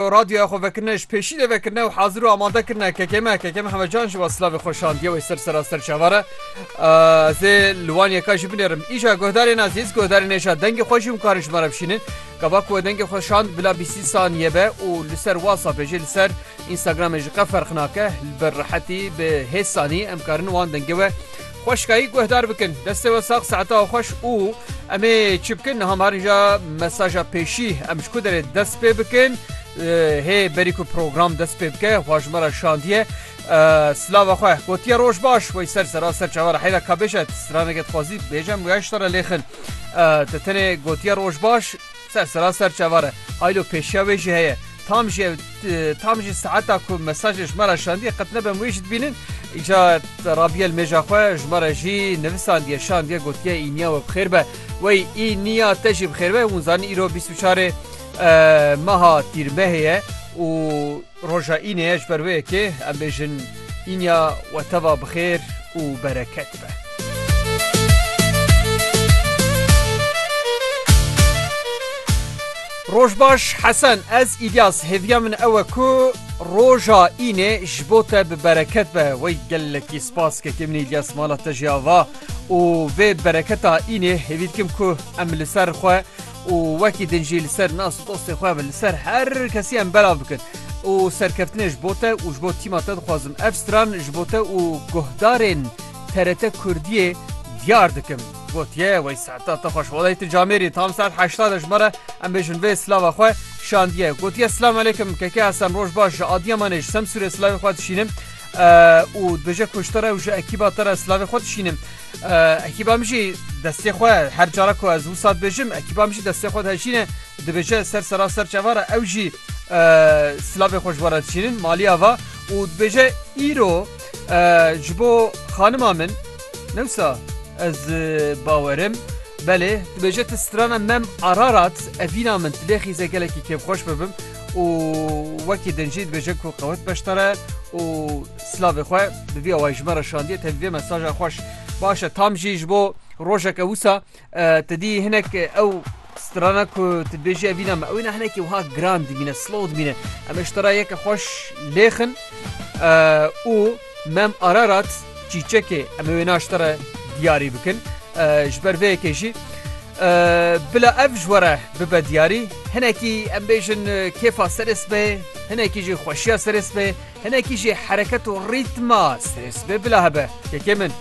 Radyoya Xwevekirine ji pêşî de vekirine û hazir û amade kirine KKM. KKM Hemecan ji we silavê xwe şandiye wê ser seraster çavar e. Ez ê li wan yeka jî binêrim. Îja guhdarên ezîz, guhdarên êşa dengê xwe jî hûn karin ji me re bişînin. Gava ku we dengê xwe şand bila bîstî sanîye be û li ser WhatsAppê jî li ser Instagramê ji qe ferq nake. Li ber rehetî bi hêz sanî em karin wan dengê we Xweşkayî guhdar bikin. Destê we sax saeta we xweş û em ê çi bikin niha marinca mesaja pêşî em ji ku derê dest pê bikin hê berî ku program dest pê bike xwa ji me re şandiye silava xwe gotiye roj baş wey ser sera ser çavara heyra kabêje straneke dixwazî bêje em weya ji te re lêxin te tenê gotiye roj baş Sersera ser çavar e. Haylo pêşiya wê jî heye. Tam jî ev tam jî saeta ku mesajê ji me re şandiye qet nebem wê jî dibînin. Îca Rabîye li mêja xwe ji me re jî nivisandiye şandiye gotiye Îniya we bi xêr be. Wey Îniya te jî bi xêr be. Hûn zanîn îro bîst û çarê meha Tîrmehê ye û Roja Înê ye ji ber wê yekê em bêjin Înya we teva bi xêr û bereket be. Roj baş Hesen ez Îlyas hêviya min ew e ku roja Înê ji bo te bi bereket be wey gelekî spas kekê min Îlyas mala te jî ava û vê bereketa Înê hêvî dikim ku em li ser xwe û wekî din jî li ser nas û dostên xwe ve li ser her kesî em belav bikin û serkeftinê ji bo te û ji bo tîma te dixwazim ev stran ji bo te û guhdarên TRT Kurdiyê diyar dikim. Gotiye wey saeta te xweş welay tu camêrî tam saet heşta de ji me re em bêjin vê silava xwe şandiye gotiye silam aleykum keke esem roj baş ji Adiyamanê ji Semsûrê silavê xwe dişînim û dibêje ku ji te re û ji ekîba te re silavê xwe dişînim Ekîba min jî destê xwe her cara ku ez wisa dibêjim ekîba min jî destê xwe dihejîne dibêje ser sera ser çeva re ew jî silavê xwe ji we re diçînin maliya va û dibêje îro ji bo xanima min newsa ez bawerim belê dibêje tu strana mem ararat evîna min tilê xîze gelekî kêfxweş bibim û wekî din jî dibêje ku qewet beşdare û Silavê xwe bi vî awayî ji me re şandiye tevî vê mesaja xweş. Baş e tam jî ji bo rojeke wisa tu dî hinek ew strana ku tu dibêjî ev îna me ew îna hinekî wiha giran dimîne slow dimîne em ji te re yeke xweş lêxin û mem ararat çîçekê em wê na ji te re diyarî bikin ji ber vê yekê jî bila ev ji were bibe diyarî hinekî em bêjin kêfa serê sibê hinekî jî xweşiya serê sibê Hinekî jî hereket û rîtma strês bê bila hebe. Yekê min.